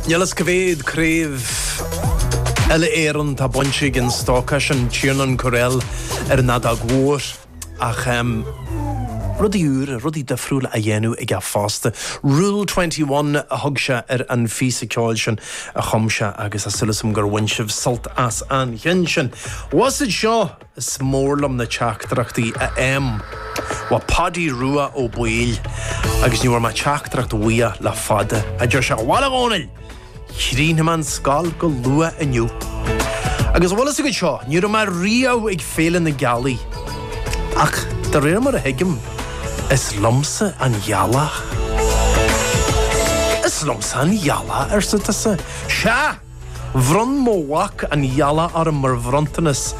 Níl fhios cá mhéad craobh uile Éireann atá bainte ag an stócach sin, Tiernan Courell ar an fheadóg mhór, ach rudaí úra, rudaí difriúla á dhéanamh aige fosta. Rule Twenty One a thug sé ar an phíosa ceoil sin a chum sé agus tá súil asam gur bhain sibh sult as an cheann sin. Whasaid seo! Is mór liom na teachtaireachtaí ó mo mhac Paidí Rua Ó Baoill agus ní bhfuair mé teachtaireacht uaidh le fada, a deir sé. Bhal a Dhónaill! Chríochnaigh mé an scoil go luath inniu. Agus a bhfuil fhios agat seo, ní raibh mé riamh ag Féile na Gealaí, ach de réir mar a thuigim, is liomsa an ghealach. Is liomsa an ghealach, arsa tusa. Sea! Bhronn mo mhac an ghealach orm mar bhronntanas,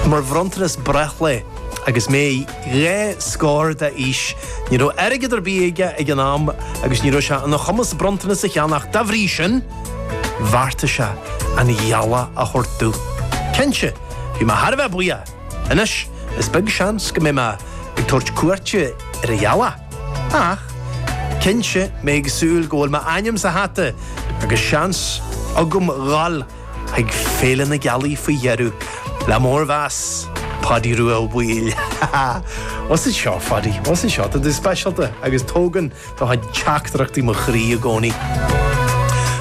mar bhronntanas breithlae, agus mé dhá scór d'aois. Ní raibh airgead ar bith aige ag an am agus ní raibh sé ina chumas bronntanas a cheannach, dá bhrí sin, bheartaigh sé an ghealach a thabhairt domh. Cinnte, bhí mé thar a bheith buíoch. Anois, is beag seans go mbeidh mé ag tabhairt cuairte ar an ghealach. Ach cinnte, mé ag súil go bhfuil m'ainm sa hata agus seans agam dhul chuig Féile na Gealaí faoi dheireadh, le mórmheas, Paidí Rua Ó Baoill. Os ard seo, Phaidí, os ard seo. Tá tú speisialta agus tógann do chuid teachtaireachtaí mo chroí i gcónaí.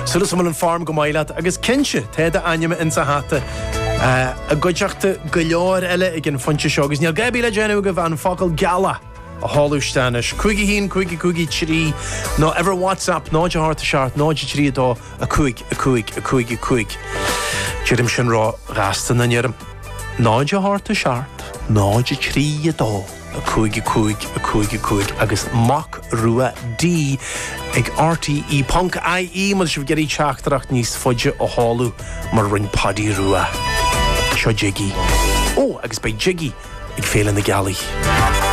Súil asam go bhfuil an form go maith leat, agus cinnte, tá d'ainm insa hata, i gcuideachta go leor eile ag an phointe seo, agus níl a dhath ar bith le déanamh agaibh ach an focal gealach! a sheoladh isteach anois, cúig a haon, cúig a cúig a trí, nó ar bhur WhatsApp 0 a hocht a seacht, 0 a trí a dó, a cúig, a cúig, a cúig, a cúig. Deirim sin róghasta nach ndeirim. 0 a hocht a seacht, 0 a trí a dó, a cúig, a cúig, a cúig, a cúig, agus Mac Rua D ag RTÉ ponc IE má tá sibh ag iarraidh teachtaireacht níos faide a sheoladh mar a rinn Paidí Rua. Seo Jiggy. Ó, agus beidh Jiggy ag Féile na Gealaí.